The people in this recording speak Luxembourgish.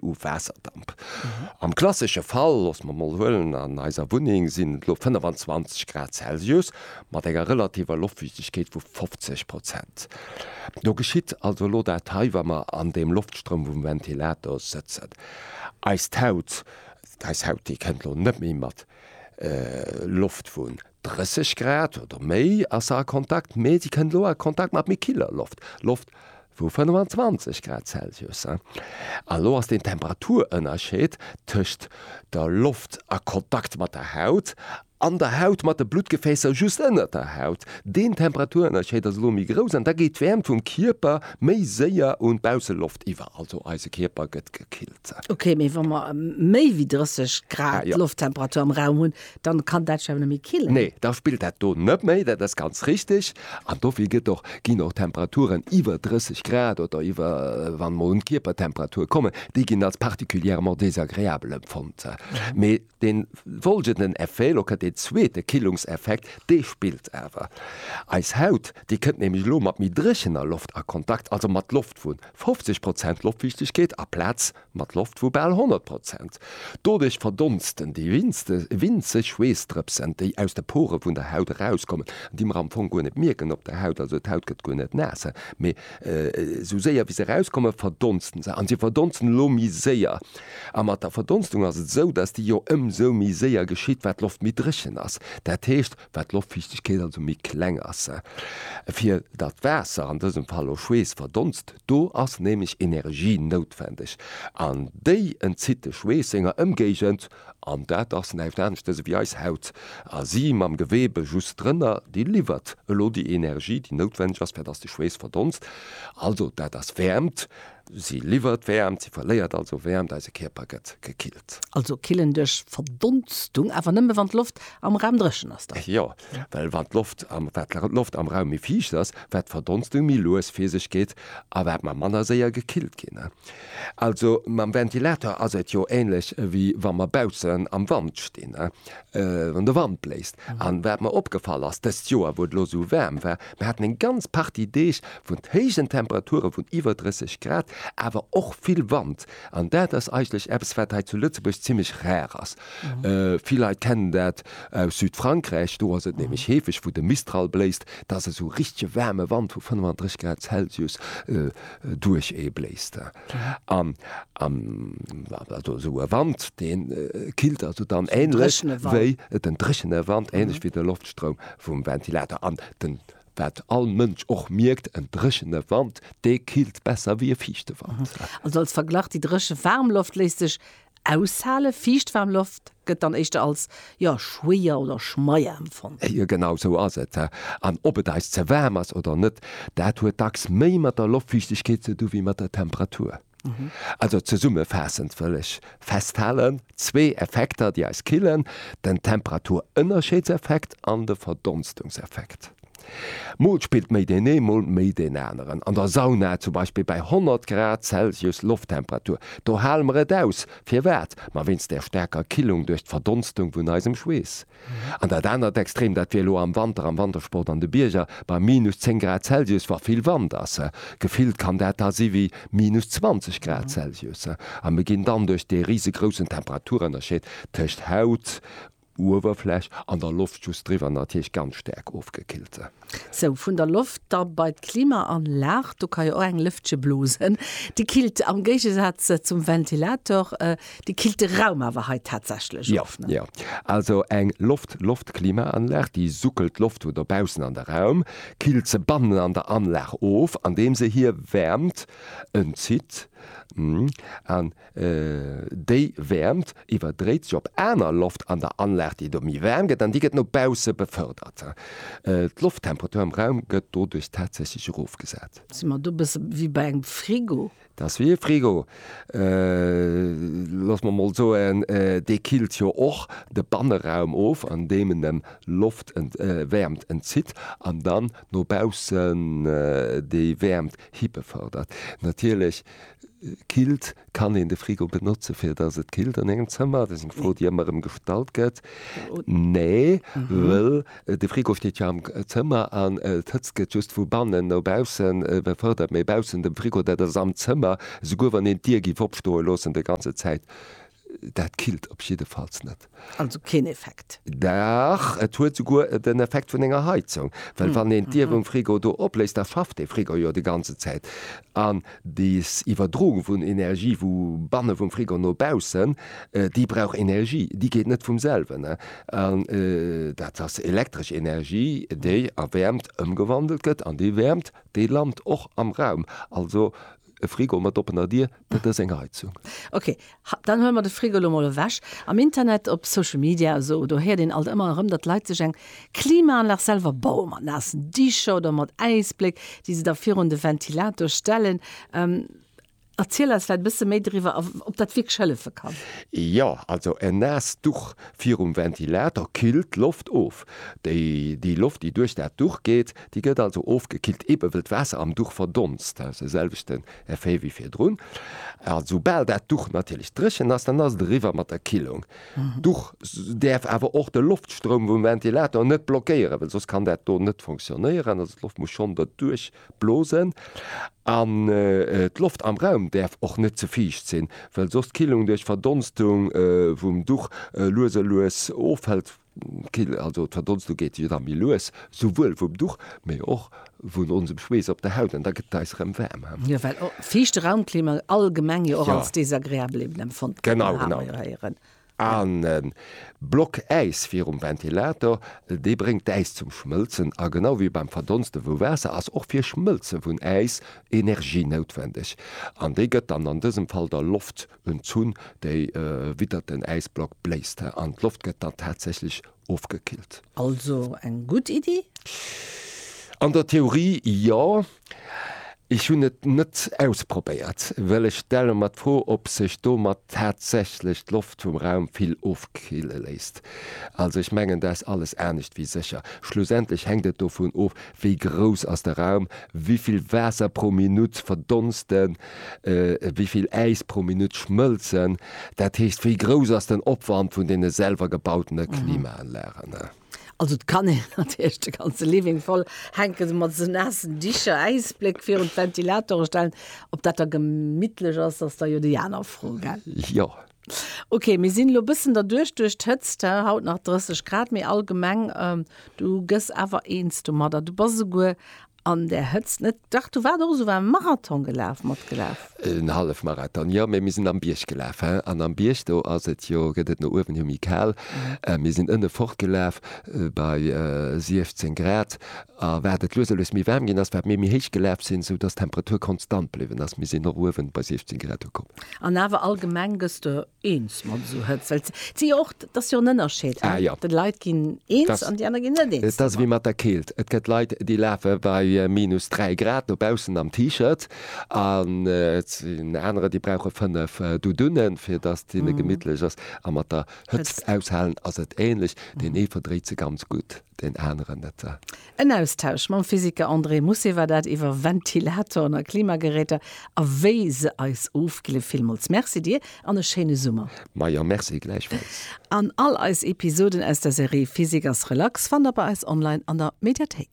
u Waasserdamp. Am klassesche Fall, loosse mer mol huelen, an eiser Wunneng sinn et elo 25 Grad Celsius mat enger relativer Loftfiichtegkeet vu 50 Prozent. Do geschitt also elo dat hei, wa mer an deem Loftstroum vum Ventilator sëtzen. Eist Haut, eis Haut, déi kënnt elo net méi mat Loft vun 30 Grad oder méi ass se a Kontakt, mee se kënnt elo a Kontakt mat méi killer Loft, Loft vu 25 Grad Celsius. An elo ass den Temperaturënnerscheed tëscht der Loft a Kontakt mat der Haut an der Haut mat de Bluttgefäässer just ënnert der Haut, deen Temperaturënnerscheed ass elo méi grouss an da geet d'Wäermt vum Kierper méi séier un d'Bausseloft iwwer. Also eise Kierper gëtt gekillt. Ok, mee wa mer méi wéi 30 Grad Lofttemperatur am Raum hunn, Dann kann dat jo net méi killen. Nee, da spillt dat do net méi, dat ass ganz richtig. An dofir gëtt och, ginn och Temperaturen iwwer 30 Grad oder iwwer, wa mer mol un d'Kierpertemperatur kommen, déi ginn als particulièrement désagréable empfonnt. Mee dee folgenden Effet, elo kënnt deen zweete Killungseffekt, dee spillt awer. Eis Haut, déi kënnt nämlech elo mat méi dréchener Loft a Kontakt, also mat Loft vu 50 Prozent Loftfiichtegkeet aplaz, mat Loft vu bal 100 Prozent. Doduerch verdonsten déi winzeg Schweessdrëpsen, déi aus de Pore vun der Haut erauskommen an déi mer am Fong guer net mierken op der Haut. Also d'Haut gëtt guer net naass, mee esou séier wéi se erauskommen, verdonsten se. A se verdonsten elo méi séier. A mat der Verdonstung ass et esou, datt déi jo ëmsou méi séier geschitt, wat d'Loft méi dréchen ass. Dat heescht, wat d'Loftfiichtegkeet also méi kleng ass, fir datt Waasser, an dësem Fall och Schweess, verdonst. Do ass nämlech Energie noutwendeg an déi entzitt de Schweess senger Ëmgéigend, an dat ass näischt anescht dëse wéi eis Haut, a si mam Geweebe just drënner, déi liwwert elo déi Energie, déi noutwendeg ass, fir datt de Schweess verdonst. Also dat ass Wäermt. Si liwwert Wäermt, si verléiert also Wäermt, eise Kierper gëtt gekillt. Also killen duerch Verdonstung, awer nëmme wann d'Loft am Raum dréchen ass dann? Jo, well wann d'Loft am, wat lachen, d'Loft am Raum méi fiicht ass, wat d'Verdonstung méi lues vir sech geet a wat mer manner séier gekillt ginn. Also mam Ventilator ass et jo ähnlech wéi wa mer baussen am Wand stinn, wann de Wand bléist. An wat mer opgefall ass dëst Joer, wou et elo esou waarm war, Mir haten eng ganz Partie Deeg vun héijen Temperature vun iwwer 30 Grad, awer och vill Wand. An dat ass eigentlech eppes, wat hei zu Lëtzebuerg zimmlech rar ass. Vill Leit kennen dat aus Südfrankräich, do ass et nämlech heefeg, wou de Mistral bléist, dass esou richtege waarme Wand vu 35 Grad Celsius duerch ee bléist. An an also esou e Wand, deen killt also dann ähnlech wéi den dréchene Wand, ähnlech wéi de Loftstroum vum Ventilator. An den, wat all Mënsch och mierkt, en dréchene Wand, dee killt besser wéi e fiichte Wand. Also als Verglach, déi dréche waarm Loft léisst sech Aushale fiicht waarm Loft gëtt dann éischter als, jo, schwéier oder schmeier empfonnt. Jo, genau esou ass et. An ob et eis ze waarm ass oder net, dat huet dacks méi mat der Loftfiichtegkeet ze du wéi mat der Temperatur. Also zesummefaassend wëll ech festhalen, zwee Effekter, déi eis killen, den Temperaturënnerscheedseffekt an de Verdonstungseffekt. Mol spillt méi deen ee mol méi deen aneren. An der Sauna zum Beispill bei 100 Grad Celsius Lofttemperatur, do hale mer et aus. Firwat? Ma wéinst där staarker Killung duerch d'Verdonstung vun eisem Schweess. An dat anert Extrem, dat wier elo am Wanter am Wantersport an de Bierger bei minus 10 Grad Celsius, wa vill Wand ass. Gefillt kann dat da si wéi minus 20 Grad Celsius. A mir ginn dann duerch dee risegroussen Temperaturënnerscheed tëscht Haut, Uewerfläch an der Loft just driwwer natierlech ganz staark ofgekillt sinn. Sou, vun der Loft da bei d'Klimaanlag. Do ka jo och eng Lëftche blosen, déi killt am Géigesaz zum Ventilator, déi killt de Raum awer hei tatsächlech of, ne? Jo, jo. Also eng Loft-Loft-Klimaanlag, déi suckelt d'Loft vu dobaussen an de Raum, killt se bannen an der Anlag of, andeem se hir Wäermt entzitt. Hm. Déi Wäermt iwwerdréit sech op aner Loft an der Anlag, déi do méi waarm gëtt, an déi gëtt no bausse befërdert. D'Lofttemperatur am Raum gëtt doduerch tatsächlech erofgesat. Si mer do e bësse wéi bei engem Frigo? Dat ass wéi e Frigo. Loosse mer mol soen, dee killt jo och de Banneraum of, andeem en em Loft, Wäermt entzitt an dann no baussen déi Wäermt hibefërdert. Natierlech Killt, Kann een de Frigo benotzen, fir datt et killt an engem Zëmmer? Dat ass eng Fro, déi ëmmer erëm gestallt gëtt. Nee, wëll de Frigo steet jo am Zëmmer an d'Hëtzt gëtt just vu bannen no baussen befërdert. Mee baussen dem Frigo, dat ass am Zëmmer, esouguer wann een d'Dier géif opstoe loossen, déi ganze Zäit Dat killt op jiddefalls net. Also keen Effekt? Dach, et huet souguer den Effekt vun enger Heizung, well wann een d'Dier vum Frigo do opléisst, da fafft dee Frigo jo déi ganze Zäit. An des Iwwerdroung vun Energie vu banne vum Frigo no baussen, déi brauch Energie, déi geet net vum selwen. An dat ass elektresch Energie, déi a Wäermt ëmgewandelt gëtt, an déi Wäermt, déi lant och am Raum. Also E Frigo mat oppener Dier, dat ass eng Heizung. Ok, dann huele mer de Frigo elo mol ewech. Am Internet, op Social Media a sou, do héiert een alt ëmmer erëm, datt Leit sech eng Klimaanlag selwer baue mat naassen Dicher oder mat Äisbléck, déi se da virun de Ventilator stellen. Erziel eis vläicht e bësse méi driwwer a ob dat wierklech hëllefe kann. Jo, also en naasst Duch virum Ventilator killt d'Loft of. Déi Loft, déi duerch dat Duch geet, Déi gëtt also ofgekillt, eebe wëll d'Waasser am Duch verdonst. Dat ass de selwechten Effet wéi virdrun. A soubal dat Duch natierlech dréchen ass, dann ass et eriwwer mat der Killung. D'Duch däerf awer och de Loftstroum vum Ventilator net blockéieren, well soss kann dat do net fonctionnéieren. Also d'Loft muss schonn derduerch blosen. An d'Loft am Raum däerf och net ze fiicht sinn, well soss d'Killung duerch Verdonstung vum Duch lues a lues ofhëlt. Kill, also d'Verdonstung geet jo da méi lues, souwuel vum Duch, mee och vun onsem Schweess op der Haut, an da gëtt et eis erëm waarm. Jo, well och fiichte Raumklima allgemeng jo och als desagreabel eben empfonnt gëtt, Genau, genau. An e Block Äis virum Ventilator, dee bréngt d'Äis zum Schmëlzen, a genau wéi beim Verdonste vu Waasser ass och fir Schmëlze vun Äis Energie noutwendeg, an déi gëtt dann an dësem Fall der Loft Ën Zunn, déi widdert den Äisblock bléist an d'Loft gëtt dann tatsächlech ofgekillt. Also eng gutt Iddi? An der Theorie jo. Ech hunn et net ausprobéiert, well ech stelle mer d'Fro, ob sech domat tatsächlech d'Loft vum Raum vill ofkille léisst. Also ech mengen, dat ass alles anescht wéi sécher. Schlussendlech hänkt et dovun of, wéi grouss ass de Raum, wéi vill Waasser pro Minutt verdonst en wéi vill Äis pro Minutt schmëlzen, dat heescht, wéi grouss ass den Opwand vun deene selwer gebautene Klimaanlagen. Also et kann een natierlech de ganze Living voll hänken, esou mat esou naassen Dicher, Äisbléck virun d'Ventilatore stellen. Ob dat da gemittlech ass, ass da jo déi aner Fro, gell? Jo. Ok, mir sinn elo e bëssen derduerch, duerch d'Hëtzt, he, haut nach 30 Grad, mee allgemeng, du gëss awer eens domadder, du bass esouguer An der Hëtzt net? Dach, du waars och esou waarm. Marathon gelaf, matgelaf? En Hallefmarathon, jo. Mee mir sinn am Bierg gelaf, he. An am Bierg, do ass et jo, gëtt et no uewen jo méi kal. Mir sinn ënne fort gelaf bei 16 Grad. A wat et lues a lues méi waarm ginn ass, wat mir méi héich gelaf sinn, esou dass d'Temperatur konstant bliwwen ass. Mir sinn och uewen bei 16 Grad ukomm. An awer allgemeng gëss de Eens mat esou Hëtzt, well et si jo och, et ass jo en Ënnerscheed, he, déi Leit ginn eens an déi aner ginn net eens domat. Et ass ewéi mat der Keelt, et gëtt Leit, déi lafe bei minus 3 Grad no baussen am T-Shirt an et sinn anerer, déi brauche fënnef Doudounën, fir datt hinne gemittlech ass. A mat der Hëtzt aushalen ass et änlech, deen ee verdréit se ganz gutt. deen aneren net da. En Austausch mam Physiker André Mussé war dat iwwer Ventilatoren a Klimageräter a wéi se eis ofkille. Villmools Merci dir an e schéine Summer. Ma jo, Merci gläichfalls. An all eis Episoden aus der Serie Physik ass relax fannt der bei eis online an der Mediathéik.